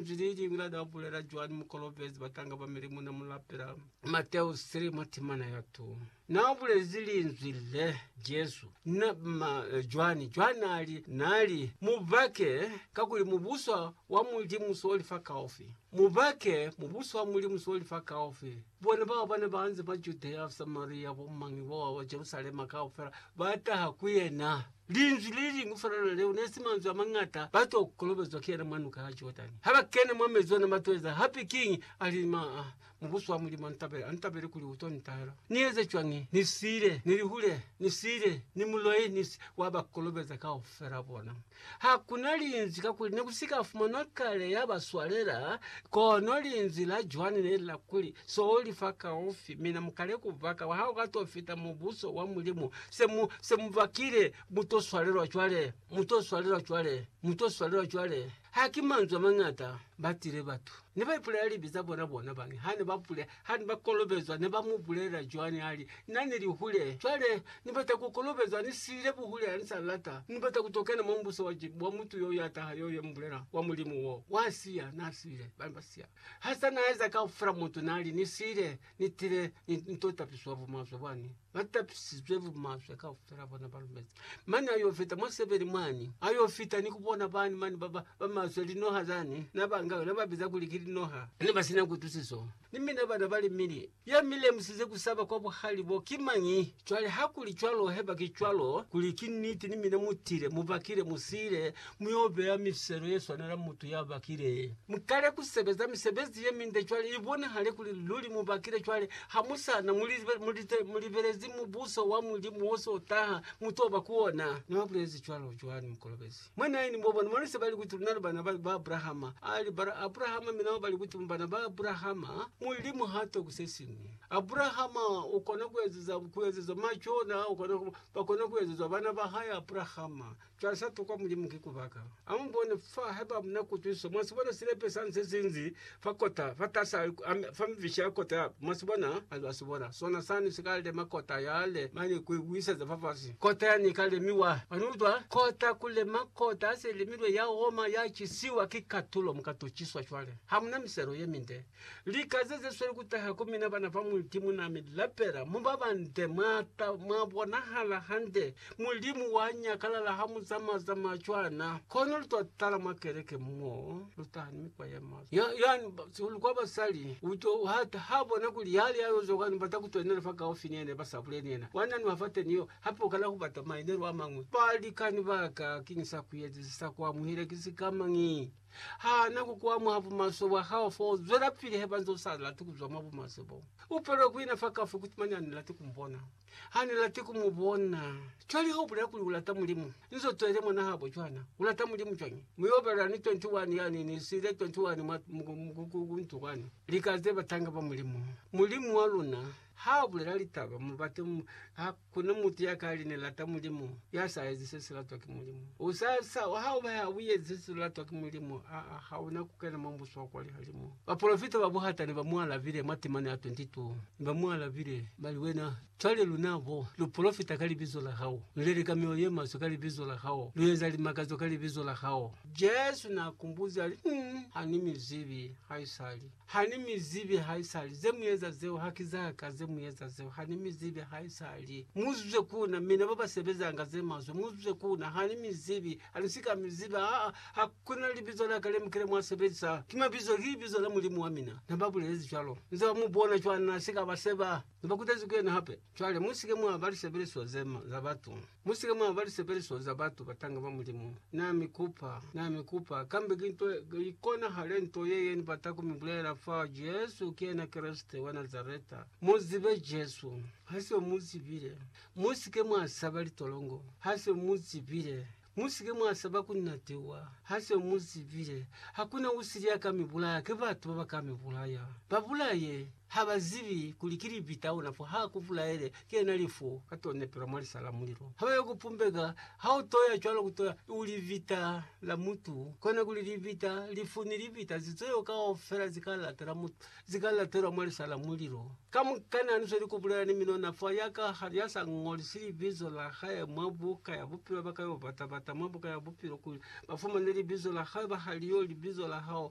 Linzwi leliñwi la ka bulela cwani mukolobezi batanga ba milimu na mulapela? Mateo 3 mwa timana ya 2 na bulezi linzwi le Jesu na ma, cwani cwa nali nali mubake kakuli mubuso wa Mulimu so li fa kaufi. Mubake mubuso wa Mulimu so li fa kaufi. Bona bao bana baanze ba Judea, Samaria, bo mangi boa wa Jerusalema kaufela ba taha ku yena. Linzwi le liñwi felelwa leo ne si manzwi a mañata, ba t'o kolobezwa ki yena mwa Nuka ya Jordani. Ha ba kene mwa mezi ona, ba t'o eza hape kiñi? A li, Maa, Mubuso wa Mulimu a ntabele, a ntabele kuli u t'o ni tahela. Ni eze cwañi? Ni siile, ni li hule, ni siile, ni muloi, ni si. Wa ba kolobeza kaufela bona. Ha ku na Linzwi, kakuli ne ku si ka fumanwa kale ya ba swalela, kono Linzwi la Joani ne li la kuli, So li fa kaufi, mina mu kale ku va ka. Ha u ka t'o fita Mubuso wa Mulimu, Se mu, se mu bakile, mu to swalelwa cwale, mu to swalelwa cwale, mu to swalelwa cwale. Ha ki manzwi a mañata ba tile batu. Ne ba ipulela libi za bona bona bani, ha ne ba pule, ha ne ba kolobezwa, ne ba mu bulelela cwani ha li, Na ne li hule. Cwale, Ni bata ku kolobezwa, Ni siile buhule, ha ni sa lata. Ni bata ku to kena mwa Mubuso wa, wa mutu yo ya taha, yo, yo mu bulela, wa Mulimu wo. Wa siya, na siile. Ba ne ba siya. Ha sa na eza kaufela mutu, na li, Ni siile. Ni tile, ni, ni to tapiswa bumaswe bwani. Ba tapisizwe bumaswe kaufela bona ba lumezi. Mane ayo fita mwa sebeli mwani. Ayo fita ni kubona bani mani ba, ba, ba maswe, linoha zani. Na ba nga, na ba biza kuli ki linoha. Ne ba sina kutusiso. Ni mina bana ba li mili. Ya mi lemusize kusaba kwa buhali bo ki mañi? Cwale, hakuli cwalo, heba ki cwalo, kuli ki niti, ni mina mu tile, mu bakile, mu siile, mi yo beya miselo ye swanela mutu ya bakile. Mu kale ku sebeza misebezi ye minde cwale, i bonahale kuli luli mu bakile cwale. Ha mu sa na mulite, mu libelezi Mubuso wa Mulimu wo s'o taha, mu t'o ba ku ona. Na bulezi cwalo Joani Mukolobezi. Mwa 9, bo bona, bona se ba li kuti luna lu bana ba Abrahama. A li, Bara Abrahama, mi nabo ba li kuti, Mu bana ba Abrahama, Mulimu h'a toki se siñwi. Abrahama u kona ku ezeza, ku ezezwa macona, u kona ku, ba kona ku ezezwa bana ba hae, Abrahama. Cwale sa tokwa Mulimu ki ku baka. Amubone fa, haiba na kutwisiso. Mwa si bona silepe sani se sinzi fa kota, fa tasa, fa mifishi ya kota ya. Mwa si bona? Lwa si bona sona sani si ka lema kota yale mane ku i buyiseza fafasi. Kota yani i ka lemiwa. Mwa ni utwa? Kota ku lema kota ya se lemilwe ya oma, ya cisiwa ki katulo, mu ka to ciswa. Cwale, ha mu na miselo ye minde. Lika ze, ze sweli ku taha ku mina, bana ba Mulimu na mi lapela, mu ba bande, mwa ta, mwa bonahala hande, Mulimu wa nyakalala ha mu zamaya zamaya cwana. Kono lu to tala mwa keleke mo lu taha ni mikwa ye maswe. Ya, yani, ba, sihulu kwa basali, u to, ha, ha bona kuli yali ya yo zoka ni bata ku twenela fa kaufi ni yena, ba sa buleli yena. Wa nanuha fa teni yo, hape u kala ku bata mainelo a mañwi. Balikani ba ka, kiñi sa ku ezize, sa ku amuhile ki sikamañi? Ha na ku ku amuha bumaswe bwa hao fo u zwelapili he ba nze u sa lati ku zwa mwa bumaswe bo. U palelwa ku ina fa kaufi kuti mane a ni lati ku mu bona. Ha ni lati ku mu bona. Cwale ha u bulela kuli u lata Mulimu, ni zo twele mwana habo cwana. U lata Mulimu cwañi? Mi u obelela ni 21 yani, ni siile 21 mwa mukuku ku ntu kwani. Lika ze batanga ba Mulimu. Mulimu wa luna ha bulela litaba, mu bate mu. Ha kuna mutu ya ka li, Ni lata Mulimu, ya sa ezi se si latwa ki Mulimu. U sa, sa, ha u ba ya u ezi se si latwa ki Mulimu, aa, ha una ku kena mwa Mubuso wa kwa lihalimu. Bapolofita ba buhata ne ba mu alabile mwa temana ya 22. Ne ba mu alabile, ba li, Wena, cwale luna bo, lu polofita ka libizo la hao, lu leleka mioyo ye maswe ka libizo la hao, lu eza limakazo ka libizo la hao. Jesu n'a kumbuzi, a li, Ñ, ha ni mi zibi haisali. Ha ni mi zibi haisali. Ze mu eza zeo ha ki za ka, ze mu eza zeo. Ha ni mi zibi haisali. Mu zwe ku na, mina ba ba sebezanga ze maswe, mu zwe ku na. Ha ni mi zibi. A li, Si ka mi ziba. Ha, ha, ha. Kona libizo laka le mukile mwa sebelisa ki mabizo ki bizo la Mulimu wa mina, na ba bulelezi cwalo. Nze ba mu bona cwana na si ka ba seba, na ba kutezi ku yena hape. Cwale, mu si ke mwa ba lisebeliswa ze ma, za batu. Mu si ke mwa ba lisebeliswa za batu, batanga ba Mulimu. Na mi kupa, na mi kupa, kambe ki nto i konahale nto ye, ye ni bata ku mi bulela fa, Jesu ki yena Kreste wa Nazareta. Mu zibe Jesu. Ha siyo mu zibile, mu si ke mwa saba litolongo. Ha siyo mu zibile, Musike mwasaba kunatewa hase muzibile hakuna usili yaka mibulaya ki batu babaka mibulaya. Babulaye habazibi kuli ki libi taona fo ha kubulaele ki yena lifu katonepelwa mwa lisa la mulilo. Habayo kupumbeka hautoya cwalo kutoya u libita la mutu kona kuli libita, lifu ni libita zitweyo kaufela zika latela mutu. Zi ka latelwa mwa lisa la mulilo. Kamukana ni zweli ku bulaya ni minona fa ya ka ha ya sa ngolisi libizo la hae mwa Buka ya Bupilo, ba ka yo bata-bata mwa Buka ya Bupilo kuli ba fumane libizo la hae, ba ha li yo libizo la hao.